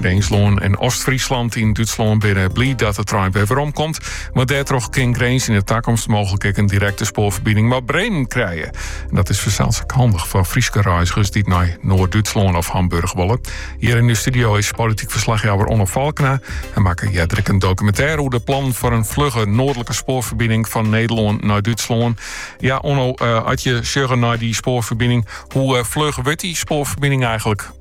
Grinslân en Ostfryslân yn Dútslân binne bliid dat de trein wer werom komt. Want dêrtroch kin Grins yn de takomst mooglik ek in direkte spoarferbining mei Bremen krije. En dat is fansels ek handich foar Fryske reizgers dy't nei Noard-Dútslân of Hamburch wolle. Hjir yn de studio is polityk ferslachjouwer Onno Falkena. Hy makke earder ek in dokumintêr oer de plannen foar in flugge noardlike spoarferbining fan Nederlân nei Dútslân. Ja, Onno, eh, at je sjogge nei dy spoarferbining, hoe eh, fluch wurdt dy spoarferbining eigenlik?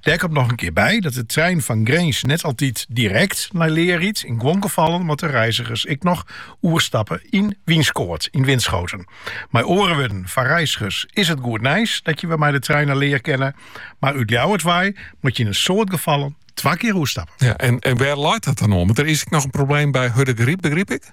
Dêr komt noch in kear by dat de trein fan Grins net altyd direkt nei Leer rydt. Yn guon gefallen moatte reizigers ek noch oerstappe yn Wynskoat, yn Winschoten. Mei oare wurden, foar reizigers is it goed nijs dat je wer mei de trein nei Leer kinne, mar út Ljouwert wei moat je yn in soad gefallen twa kear oerstappe. Ja, en, en wêr leit dat dan oan? Want der is ek noch in probleem by Hurdegaryp, begryp ik?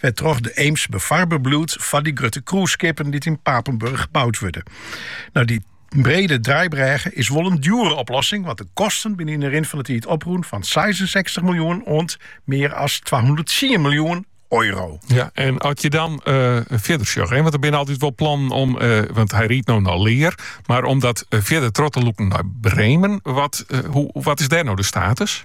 wêrtroch de Eems befarber bliuwt foar dy grutte cruiseskippen dy't yn Papenburg boud wurde. No, dy brede draaibrêge is wol in djoere oplossing, want de kosten binne yn de rin fan de tiid oprûn fan 66 miljoen oant mear as 210 miljoen euro. Ja, en at je dan uh, fierder sjogge, hè, want der binne altyd wol plannen om, eh, want hy rydt no nei Leer, mar om dat eh, fierder troch te lûken nei Bremen, wat, hoe, wat is dêr no de status?